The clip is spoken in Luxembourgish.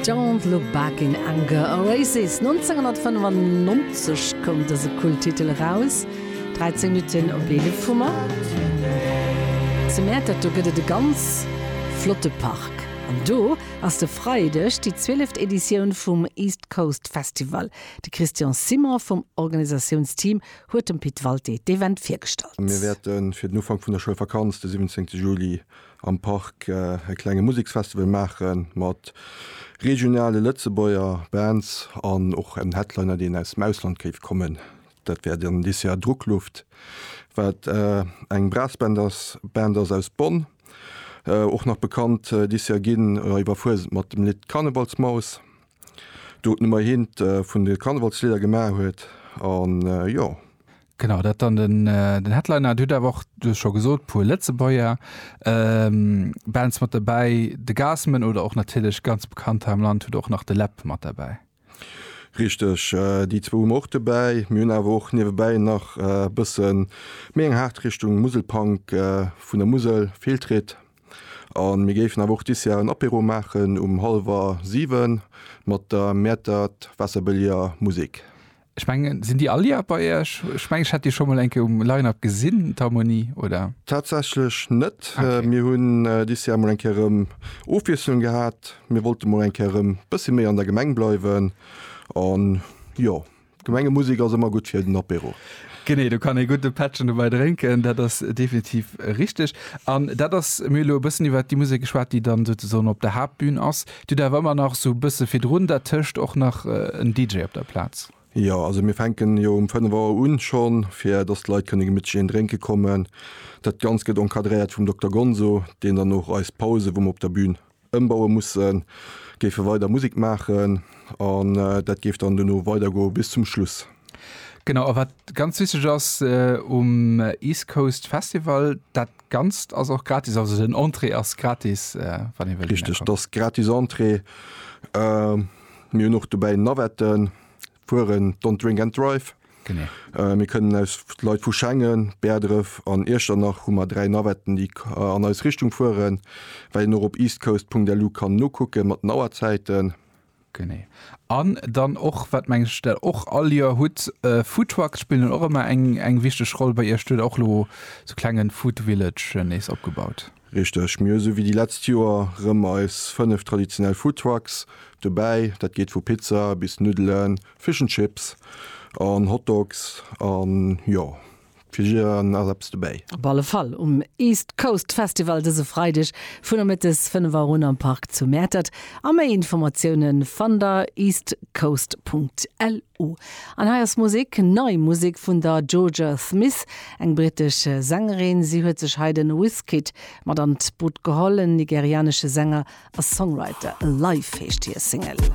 Don't Look Back in Anger, Oasis, 1995 koum dëse Kulttitel eraus, 13 Minutten op 11 hu mer zu Mäertert. Do gëtt et e ganz flotte Park an do ass de Freideg déi zwieleft Editioun vum East Coast Festival. De Christian Simon vum Organisatiounsteam huet dem Pit Walté d'Event virgestallt. Mir wäerte fir den Ufank vun der Schoulvakanz, de 17 Juli, am Park e klenge Museksfestival maache mat regionale Lëtzebuerger Bands an och en Headliner, deen aus dem Ausland géif kommen. Dat wär dann dës Joer Druckluft, wat eng Brassband ass, Band ass aus Bonn, och nach bekannt dës Joer ginn iwwer Fuesent mat dem Lidd Karnevalsmaus, do d'Nummer eent vun de Karnevalslidder gemaach huet an jo. Genau, dat dann den, den Headliner. Et huet awer och, du hues scho gesot, puer Lëtzebuerger ähm, Bands mat derbäi. De Gassman oder och natierlech ganz bekannt hei am Land, huet och nach de Läb mat derbäi. Richteg, déi zwou hu mer och dobäi. Mir hunn awer och niewebäi nach e bësse méi eng haart Richtung Muselpunk vun der Musel, Fehltritt. A mir géifen awer och dis Jar en Apéro maachen um hallwer siwe mat der Mäertert Wasserbëlliger Musik. Ech mengen, sinn déi all Joer bei Iech? Ech mengen, ech hätt déi scho mol eng Kéier um Line-Up gesinn, d'Harmonie, oder? Tatsächlech net. Okay. Mir hunn dis Joer mol eng Kéier erëm Ofwiesslung gehat. Mir wollte mol eng Kéier erëm bëssi méi an der Gemeng bleiwen. An jo, Gemengemusek ass ëmmer gutt fir den Apéro. Genee, do kann ee gudde Pättchen dobäi drénken, dat ass definitiv richteg. An dat ass, mir hu lo e bëssen iwwert déi Musek geschwat, déi dann souzesoen op der Haaptbün ass. Dir hutt awer ëmmer nach esou e bësse virdrun dat tëscht och nach en DJ op der Plaz? Jo, also mir fänken jo um 5 Auer un schonn, fir dass d'Leit kënne gemittlech een drénke kommen. Dat Ganzt gëtt encadréiert vum Dokter Gonzo, deen dann och eis Pause, wou mer op der Bün ëmbaue mussen, géife weider Musek maachen an dat géif dann duerno weidergoe bis zum Schluss. Genau, a wat ganz wichteg ass um East Coast Festival, dat Ganzt ass och gratis, also den Entrée ass gratis, wann ee wëllt dohinner kommen. Richteg, et ass gratis Entrée. Mir hunn och dobäi Navetten, fueren Don't Drink and Drive. Genee. Mir kënnen aus, Leit vu Schengen, Bäerdref an Iechternach hu mer dräi Navetten, déi an eis Richtung fueren, well een och op eastcoast.lu kann nokucke mat den Auerzäiten. Genee. An dann och, wat meng ech der och all Joer hutt, Foodtrucks spillen och ëmmer eng, eng wichteg Roll bei Iech. Du hutt och elo sou klengen Food Village nees opgebaut. Richteg. Mir hu sou wéi déi letzt Joer rëm eis 5 traditionell Foodtrucks dobäi. Dat geet vu Pizza bis Nuddelen, Fish and Chips an Hotdogs an jo. Fir jidderen ass eppes dobäi. Op alle Fall um East Coast Festival dëse Freideg funnermëttes 5 Auer un am Park zu Mäertert a méi Informatioune fannt der eastcoast.lu. An hei ass Musek, nei Musek vun der Jorja Smith, eng brittesch Sängerin. Si huet sech hei de Wizkid mat an d'Boot geholl, en nigerianesche Sänger a Songwriter. Alive heescht hir Single.